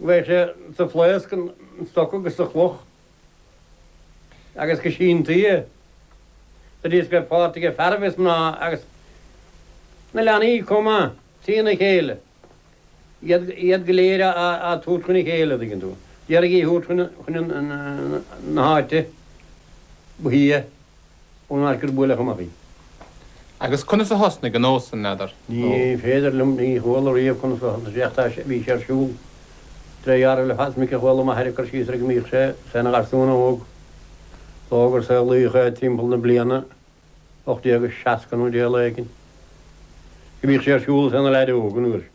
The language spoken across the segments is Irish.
Bheadh sé sa phlaosc, an stoc agus sa chloch agus go sínfidhe sa diosg ar pháirt aige fearaibh is mná agus na leanaí chomh maith, trína chéile, iad go léir a' tabhairt chun a chéile, a' dtuigeann tú, d'iarraidh í a thabhairt chun na háite ba shia. ón áit gur buaileadh amach í. Agus conas a thosnaigh an nós san, n'fheadar? Ní féidir liom, ní chuala riamh conas a thosnaigh sé ach tá sé, bhí sé ar siúl tré ghearradh le fada. Minic a chuala m'athair ag cur síos air go mbíodh sé féin ina gharsún óg dó gur saolaíodh é timpeall na bliana 1860 nó dé a lae éigin, go mbíodh sé ar siúl is é ina leaid óg an uair sin.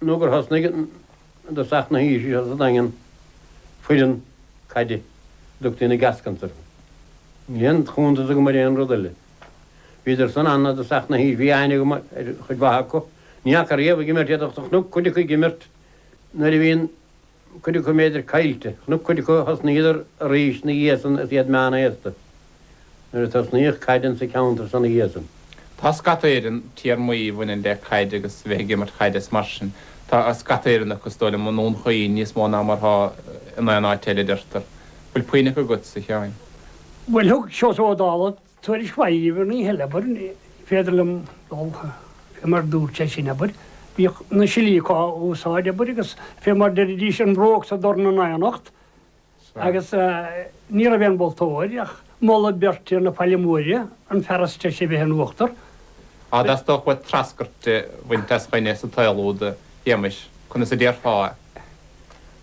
nó gur thosnaigh i dtosach na haoise seo sa Daingean foireann caide a dtugtaí na Gascons orthu. Níl aon chuntas agam ar aon rud eile. Bhíodar san ann i dtosach na haoise, bhí aithne agam ar chuid mhaith acu. Ní fhaca riamh ag imirt iad ach chnuc cuid acu ag imirt nuair a bhí an. cuid acu b'fhéidir caillte, chnuc cuid acu a thosnaíodar arís 'na dhiaidh san is iad meánaosta nuair a tosnaíodh caid insa cheanntar san 'na dhiaidh san. Tá scata Éireann, téarmaí a bhaineann le caid agus bheith ag imirt chaide is mar sin, tá scata Éireann acu, is dóigh liom, i nDún Chaoin níos mó ná mar atá in aon áit eile, adeirtear. Bhfuil puinn acu agat-sa, a Sheáin? Bhuel, thug Seosamh Ó Dálaigh Tuairisc mhaith uaidh an oíche eile, abair. Ní féidir liom dul, fé mar a dúirt sé sin, abair. Bhíodh na silíoca á úsáid, abair, agus fé mar deiridís an bhróg is an dorn in aonacht, agus ní raibh aon mholtóir ach moladh beirte na Faille Móire, an fear is treise a bheith in uachtar. Tá, is dócha. Ach treascairt a bhaint as dhuine sa tsaol úd, a Shéamais? Conas a déarfá é?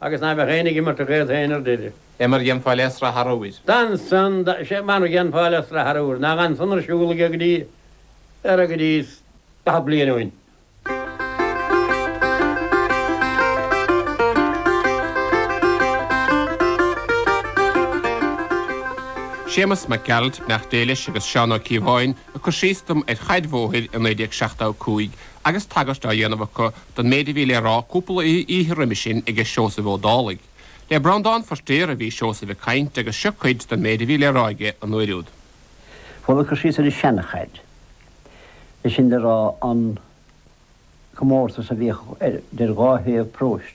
Agus ná beadh aoinne ag imirt a ghaoth féin ar d'fhir. Fé mar dhéanfá le sraith arbhair. D'ansan, d'fh, fé mar dhéanfá le sraith arbhair. Nach ansan ar siúl aige go dtí, ar a go dtí is. daichead bliain ó shin. Séamus Mac Gearailt, beannacht Dé leis, agus Seán Ó Cíobháin, ag cur síos dom ar chaid bhóthair i 1975 agus tagairt á dhéanamh acu don méid a bhí le rá cúpla oíche roimis sin aige Seosamh Ó Dálaigh. Le Breandán Feiritéar a bhí Seosamh ag caint agus seo cuid den méid a bhí le rá aige an uair úd. Bhuel, ag cur síos ar an seanchaid, sé sin le rá an comórtas a bhíodh idir dhá thaobh paróiste,